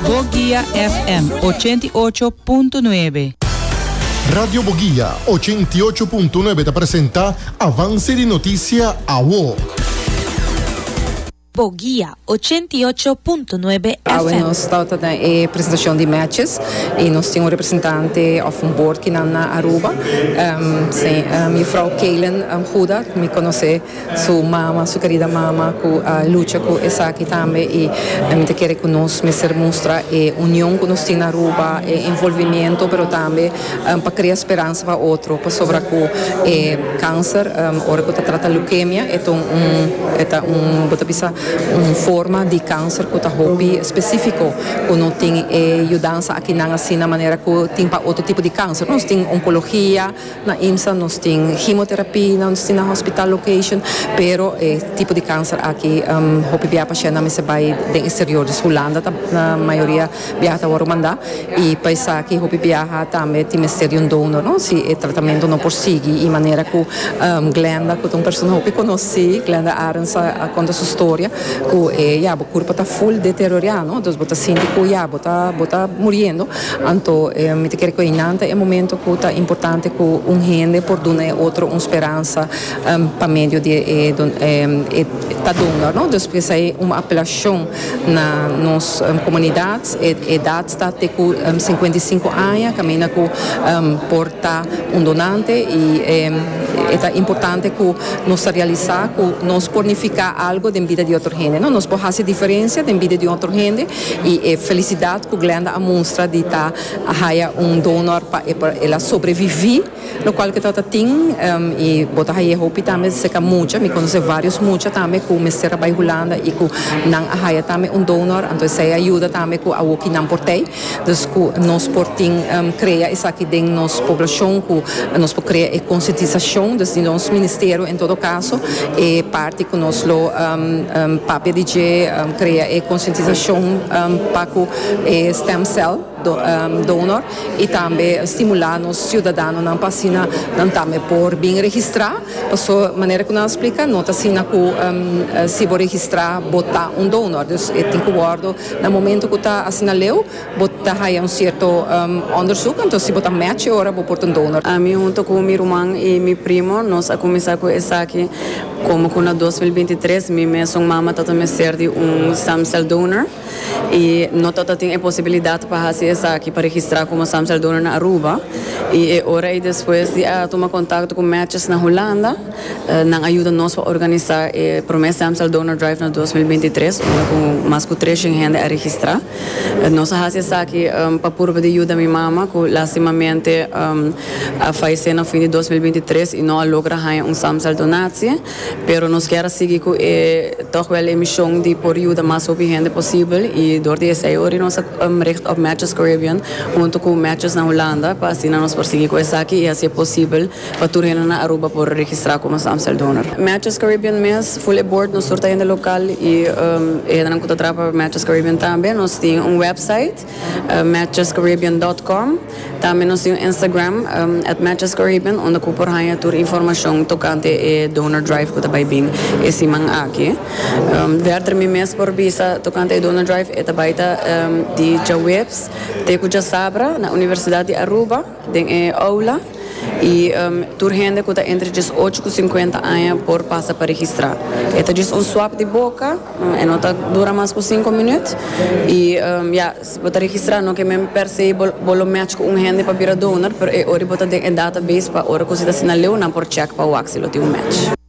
Boguia FM ochenta i ocho punto nuebe. Radio Boguia ochenta i ocho punto nuebe ta presenta Avance di Noticia Awo. Boguia ochenta i ocho punto nuebe FM. Awe nos ta ta den e presentacion di matches y nos tin un representante of un board kinan na Aruba. Mefrou Kaylen Huda mi conoce. su mama, su kerida mama ku a lucha ku esaki tambe i mi ta kere ku nos mester mustra e union ku nos tin na Aruba, e envolvimiento pero tambe pa krea speransa pa otro pasobra ku e kanser ora ku ta trata leukemia e ta un e ta un bo ta bisa un forma di kanser ku ta hopi spesifiko ku no tin e yudansa akinan asina manera ku tin pa otro tipo di kanser nos tin onkologia, Na IMSA nos tin himoterapia, nos tin na hospital location, pero e tipo di kanser aki hopi bia pashennan mester bai den exterior, dus Hulanda ta na mayoria biaha ta wòrdu mandá i pa esaki hopi biaha tambe tin mester di un donor, no? si e tratamentu no por sigui i manera ku Glenda ku ta un persona hopi konosí, Glenda Arends a konta su storia ku e ya bo kurpa ta full deteriorá, no? Entonces bo ta sinti ku ya bo ta bo ta muriendo. Anto, mi ta kere ku einan ta e momento ku ta importante ku un hende por duna e otro un speransa pa medio di e ta donga, no? Dus esei un apelashon na nos komunidat, e edat sta te ku sinkuenta i sinku aña kaminda ku por ta un donante i e ta importante ku nos ta realisá ku nos por nifiká algu den bida di otro hende, no? Nos por hasi diferensia den bida di otro hende y e felicidad cu Glenda a mustra di ta haya un donor pa e por ela sobrevivi lo cual ke trata tin y bo ta haya hopi tambe seca mucha mi conoce varios mucha tambe cu mester a bay Hulanda y cu nan a haya tambe un donor anto esey a yuda tambe cu awo ki nan por tey dus cu nos por tin crea esaki den nos poblacion cu nos por crea e concientisacion dus di nos ministerio en todo caso e parti cu nos lo papia di dje. Crea e concientisacion pa cu e stem cell donor y tambe stimula nos ciudadanonan pa asina nan tambe por bin registra paso manera cu nan a splica no ta asina cu si bo registra bo ta un donor, dus e tin cu wordo na momento cu ta asina leu. Bo ta haya un cierto onderzoek, enton si bo ta match e ora bo por ta un donor. Ami hunto cu mi ruman y mi primo nos a cuminsa cu esaki como cu na dos mil binti tres mi mesun mama tata mester di un stem cell donor y no tata tin e posibilidad pa haci esaki pa registra como stem cell donor na Aruba y e ora y despues di a tuma contacto cu matches na Hulanda nan a yuda nos pa organisa e prome stem cell donor drive na dos mil binti tres unda cu mas cu treshen hende a registra. Nos a hasi esaki pa purba di yuda mi mama, cu lastimamente a faisé na fin di dos mil binti tres y no a logra haña un stamcel donatie. Pero nos kier a sigui cu e, toch wel e mision di por yuda mas hopi hende posibel y dor di esey ori nos a richt op Matches Caribbean hunto cu Matches na Hulanda pa asina nos por sigui cu esaki y hacié posibel pa tur hende na Aruba por registra como su Amstel Donor. Matches Caribbean mes, full e bord, nos tur ta hende local y e hendenan cu ta traha pa Matches Caribbean tambe. Nos tin un website, matchescaribbean dot com. Tambe nos tin un Instagram, at matchescaribbean, unda cu por haya tur informacion tocante e Donor Drive cu ta bay bin e siman aki. Verder mi mes por bisa tocante e Donor Drive, e ta bay ta di djaweps te cu djasabra na Universidad di Aruba. Den e oula y tur hende cu ta entre diesocho cu cincuenta aña por pasa pa registra. E ta djis un swab di boca, e no ta dura mas cu cinco minuut y ya, si bo ta registra no ke men per se bo lo match cu un hende pa bira donor, pero e ora y bo ta den e database pa ora cu si ta asina leu nan por check pa wak si lo tin un match.